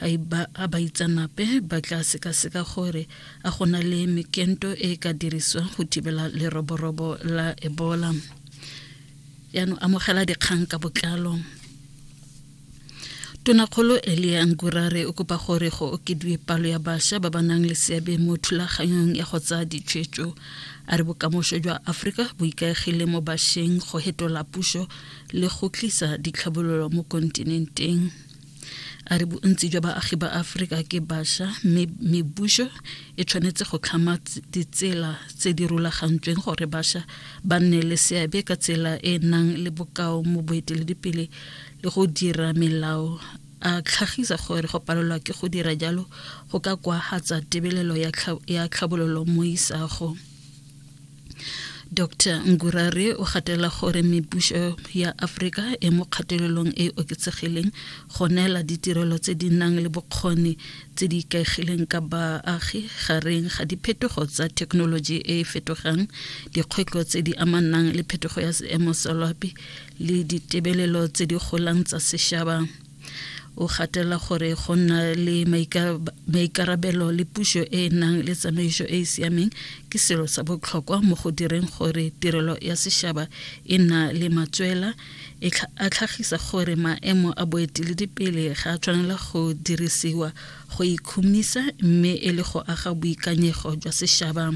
a baitsanape ba tla sekaseka gore a go na le mekento e e ka dirisiwang go thibela leroborobo la ebola yaanong amogela dikgang ka botlalo tonakgolo elia ngurare o kopa gore go okediwe palo ya bašwa ba ba nang le seabe mo thulaganyong ya go tsaya ditshwetso a re bokamoso jwa aforika bo ikaegile mo bašweng go hetola puso le go tlisa ditlhabololo mo kontinenteng a re bontsi jwa baagi ba aforika ke basha mme mebuso e tshwanetse go tlhama ditsela tse di rulagantsweng gore basha ba nne le seabe ka tsela e e nang le bokao mo boeteledipele le go dira melao a tlhagisa gore go palelwa ke go dira jalo go ka kwagatsa tebelelo ya tlhabololo mo isago dr ngurare o gatela gore mebušo ya aforika e mo kgatelelong e e oketsegileng go neela ditirelo tse di nang le bokgoni tse di ikaegileng ka baagi gareng ga diphetogo tsa thekenoloji e e fetogang dikgwetlho tse di amanang le phetogo ya seemo sa loapi le ditebelelo tse di golang tsa sešaba o gatela gore go nna le maikarabelo le puso e e nang le tsamaiso e e siameng ke selo sa botlhokwa mo go direng gore tirelo ya sešaba e na le matswela e a tlhagisa gore maemo a boeteledipele ga a tshwanela go dirisiwa go ikhumisa mme e le go aga boikanyego jwa sešaba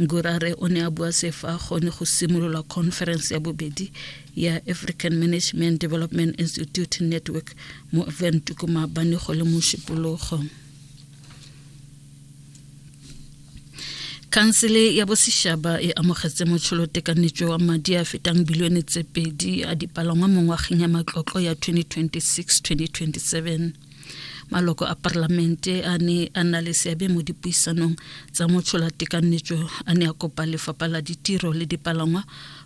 ngurare o ne a bua se fa gone go simolola conference ya bobedi ya african management development institute network mo ventuko maabane go le mo šupologo khansele ya bosešaba e amogetse motšholotekanyetšo wa madi a fetang bilione tse pedi a dipalangwa mo ngwageng ya matlotlo ya 2026-2027 maloko a parlamente a ne a nna le seabe mo dipuisanong tsa motshola-tekanyetso a ne a kopa lefapha la ditiro le dipalangwa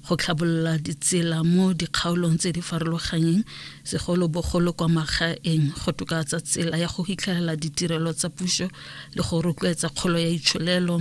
go tlhabolola ditsela mo dikgaolong tse di farologanyeng segolobogolo kwa magaeng go tokatsa tsela ya go fitlhelela ditirelo tsa puso le go rotloetsa kgolo ya itsholelo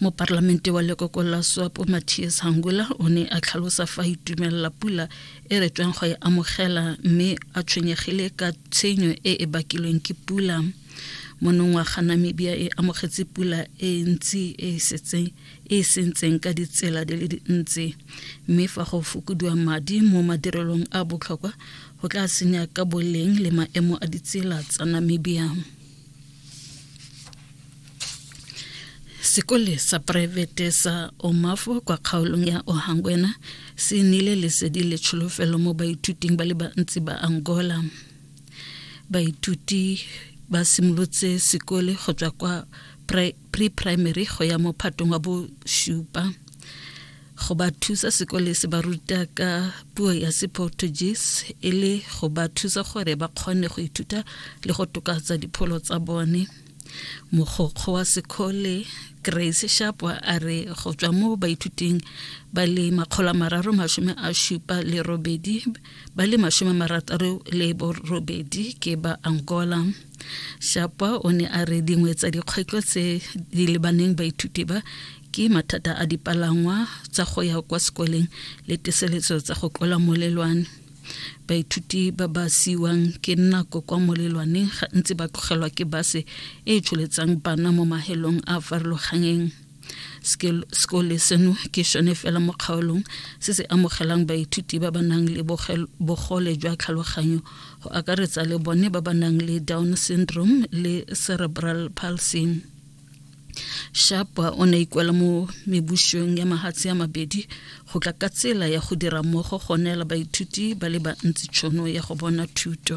moparlamente wa lekoko la swapo matthias hangula o ne a tlhalosa fa itumelela pula e re tsweng go e amogela mme a tshwenyegile ka tshenyo e e bakilweng ke pula monongwaga namibia e amogetse pula e ntsi e e sentseng ka ditsela di le dintsi mme fa go fokodiwa madi mo madirelong a botlhokwa go tla senya ka boleng le maemo a ditsela tsa namibia sekole sa poraefete sa omafo kwa kgaolong ya ohangwena se nnile lesedi le tsholofelo mo baithuting ba le bantsi ba angola baithuti ba simolotse sekole go tswa kwa pre-primary go ya mo phatong wa bosupa go ba thusa sekole se ba ruta ka puo ya seportuguese e le go ba thusa gore ba kgone go ithuta le go tokatsa dipholo tsa bone mogokgo wa sekole grace shapwa a re go tswa mo baithuting ba le makgolo mararo masome a šupa le robedi ba le masome marataro le borobedi ke ba angola shapwa o ne a re dingwe tsa dikgwetlho tse di lebaneng baithuti ba ke mathata a dipalangwa tsa go ya kwa sekoleng le teseletso tsa go tlola molelwane baithuti ba ba siwang ke nako kwa molelwaneng gantsi ba tlogelwa ke base e e tsholetsang bana mo mahelong a farologanyeng sekole seno ke sone fela mo kgaolong se se amogelang baithuti ba ba nang le bogole jwa tlhaloganyo go akaretsa le bone ba ba nang le down syndrome le cerebral palsy sharp o ne ikwela mo mebušong ya mahatshe ya mabedi go tla ka tsela ya go dira mmogo go neela baithuti ba le bantsi tšhono ya go bona thuto